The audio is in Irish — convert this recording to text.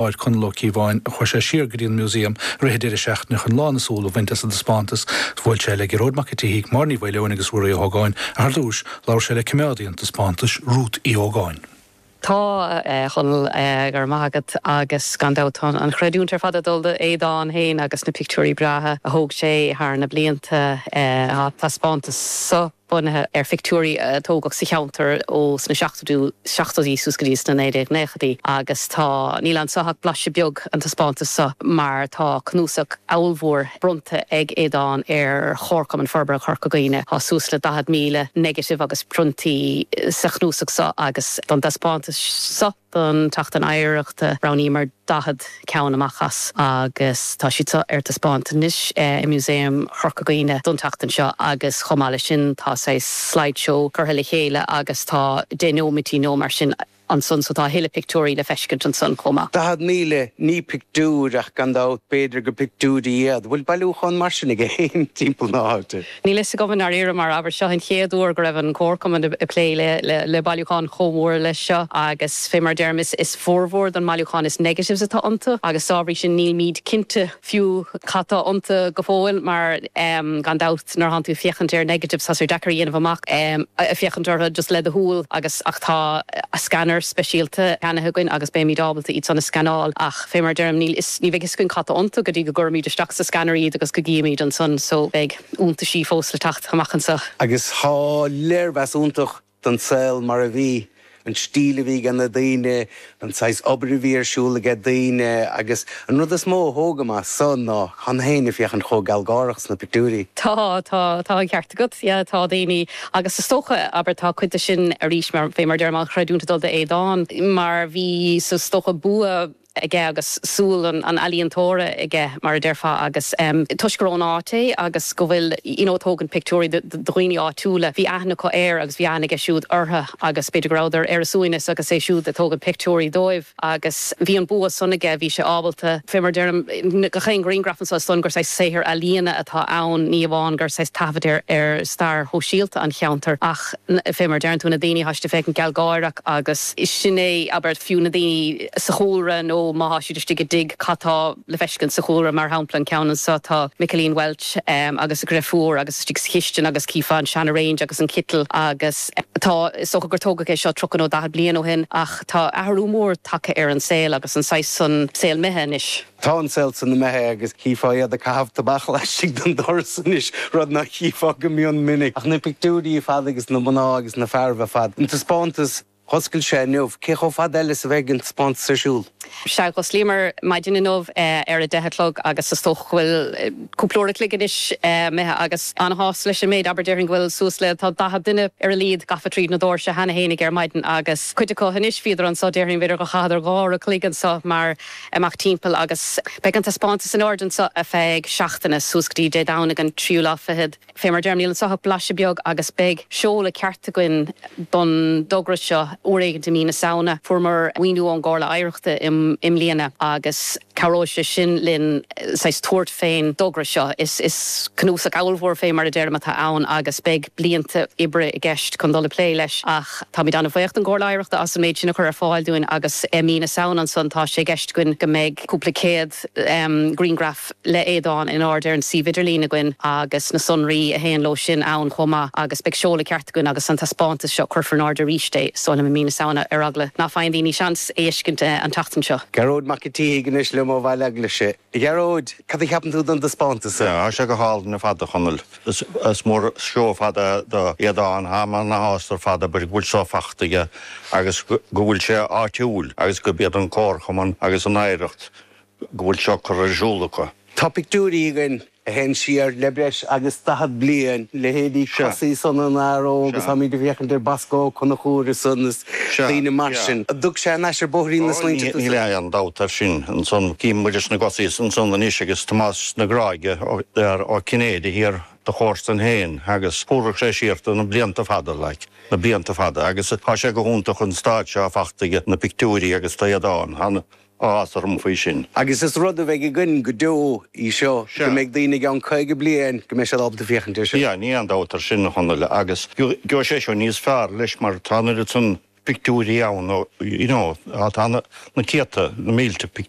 áit Conall Ó Cíobháin chuaigh sé siar go dtí an Músaem i rith an deireadh seachtaine chun lán a súl a bhaint as an dtaispeántas Bhuail sé le Gearóid Mac an tSíthigh, Máire Ní Mhaoileoin agus Ruairí Ó hÓgáin ach ar dtús, labhair sé le coimeádaí an taispeántais, Rút Uí Ógáin. Tá, a Chonaill, go raibh maith agat agus gan dabht tá an chreidiúint ar fad ag dul d'Aodán féin agus na pictiúirí breátha a thóg sé thar na blianta. Tá an taispeántas seo. bunaithe ar phictiúirí a tógadh sa cheantar ó sna seachtóidí, seachtóidí suas go dtí sna 1990idí agus tá, níl anseo ach blaiseadh beag, an taispeántas seo mar tá cnuasach ábhalmhór bronnta ag Aodán ar Chomharchumann Forbartha Chorca Dhuibhne. Tá suas le 40,000 negative agus priontaí sa chnuasach seo agus don dtaispeántas seo, Don tSeachtain Oidhreachta roghnaíomar 40 ceann amach as agus tá siad seo ar taispeáint anois i Músaem Chorca Dhuibhne don tseachtain seo agus chomh maith leis sin tá saghas slide show curtha le chéile agus tá 10 nóimeataí nó mar sin ansan so tá a thuilleadh pictiúirí le feiscint ansan chomh maith. 40,000 ní pictiúir ach gan dabht b'fhéidir gur pictiúirí iad, bhfuil bailiúchán mar sin ag éinne timpeall na háite? Níl a fhios agam, i ndáiríre mar, abair. Seo an chéad uair go raibh an Comharchumann ag plé le bailiúchán chomh mór leis seo agus, fé mar a deirim, is formhór don mbailiúchán is negatives atá iontu agus dá bhrí sin nílmid cinnte fiú cad tá iontu go fóill mar gan dabht nuair atánn tú ag féachaint ar negatives tá sé deacair a dhéanamh amach ag féachaint orthu just le do shúil agus ach tá scanner speisialta ceannaithe againn agus beimid ábalta iad san a scanáil ach Fé mar a deirim, níl fhios, ní bheidh fhios againn cad tá iontu go dtí go gcuirimid isteach sa scanner iad agus go gcífimid ansan, so beidh iontaisí fós le teacht amach anseo. Agus tá léirmheas iontach den saol mar a bhí, an stíl a bhí ag na daoine, an saghas obair a bhí ar siúl ag a' daoine, agus an rud is mó a thógaim as so ná, tá na daoine ag féachaint chomh gealgháireach sna pictiúirí. Tá, tá, tá an ceart agat, yeah, tá daoine, agus is dócha, abair, tá cuid de sin, arís, mar, fé mar a deirim, an chreidiúint ag dul do Aodán, mar bhí, is dócha, bua aige agus súil an, an ealaíontóra aige, mar a déarfá agus em, toisc gur ón áit é agus go bhfuil, you know, ag tógaint pictiúirí do, do dhaoine áitiúla, bhí aithne acu air agus bhí aithne aige siúd orthu agus b'fhéidir go rabhadar ar a suaimhneas agus é siúd ag tógaint pictiúirí dóibh. agus bhí an bua san aige, bhí sé ábalta, fé mar a deirim, gach aon ghriangraf anso, is dóigh gur saghas saothar ealaíona atá ann, ní amháin gur saghas taifead é ar stair shóisialta an cheantair ach fé mar a deireann tú, na daoine tá siad ag féachaint gealgháireach agus sin é, abair, fiú na daoine sa chúlra nó má thá siad istigh i dtigh, cad tá le feiscint sa chúlra, mar shampla, an ceann anso, tá Micilín Welch agus a dhreifiúr agus istigh sa chistin agus chífeá an seana range agus an citeal agus tá, is dócha gur tógadh é seo tríocha nó daichead bliain ó shin ach. Tá athrú mór tagtha ar an saol agus an saghas san saol imithe anois. Tá an saol san imithe agus chífeá iad ag caitheamh tobac laistigh den doras anois, rud ná chífeá go mion minic. Ach na pictiúirí ar fad agus na mná agus na fearaibh ar fad, an taispeántas, dh'oscail sé inniu, cé chomh fada eile is a bheidh an taispeántas ar siúl? Sea, d'osclaíomar maidin inniu ar a deich a chlog agus is dócha go bhfuil cúpla uair a chloig anois imithe agus an-shásta leis an méid, abair. Déarfainn go bhfuil suas le, tá, daichead duine ar a laghad gafa tríd na doirse cheana féinig ar maidin agus cuid acu anois, bhíodar anseo, déarfainn, b'fhéidir gur chaitheadar dhá uair a chloig anseo mar amach timpeall agus beidh an taispeántas in airde anseo ar feadh seachtaine, suas go dtí Dé Domhnaigh an tríú lá fichead. Fé mar a deirim, níl anso ach blaiseadh beag agus beidh seoladh ceart againn don dtogra seo uair éigint i mí na Samhna. Fuaireamar maoiniú ón gComhairle Oidhreachta i mbliana agus cabhróidh sé sin linn saghas tabhairt fén dtogra seo. Is cnuasach ábhalmhór fé mar a deirim atá ann agus beidh blianta oibre i gceist chun dul ag plé leis ach táimid an-bhaoch don gComhairle Oidhreachta as an méid sin a chur ar fáil dúinn agus i mí na Samhna ansan tá sé i gceist againn go mbeidh cúpla céad griangraf le hAodán in airde ar an suíomh idirlín againn agus na sonraí a théann leo sin ann chomh maith agus beidh seoladh ceart againn agus an taispeántas seo cuirfear in airde arís é sa halla i mí na Samhna ar eagla ná faigheann daoine seans é a fheiscint an tseachtain seo. Gearóid Mac an tSíthigh anois liom ó Bhaile Eaglaise. A Ghearóid, cad a cheapann tú don taispeántas seo? Tá sé go hálainn ar fad, a Chonaill. Is mór an seó ar fad do Aodán táim an-shásta ar fad go bhfuil seo fachta aige agus go bhfuil sé áitiúil agus gurb iad an comharchumann agus an oidhreacht go bhfuil seo curtha ar siúl acu. Tá pictiúirí againn a théann siar le breis agus daichead bliain, leithéidí Cosaí san Fhionnar Óg agus táimid ag féachaint ar Bosco Ó Conchúir is daoine mar sin. Thug sé ar ais ar bhóithrín na smaointe dúinn. Níl aon dabht air sin. Ansan cím Muiris na gCosaí ansan anois agus Tomás na Gráige, Ger Ó Cinnéide thiar, do chomharsain féin agus thabharfadh sé siar tú na blianta fada, like, na blianta fada agus tá sé go hiontach an staid seo fachta aige na pictiúirí agus tá Aodán. áthas orm faoi sin agus is rud a bheidh againn go deo í seo go mbeidh daoine i gceann 50 bliain go mbeidh siad ábalta féachaint air sin. Níl aon dabht air sin, a Chonaill, agus gheobhaidh sé seo níos fearr leis mar tá an oiread san pictiúirí ann, you know, tá na céadta, na mílte pictiúr.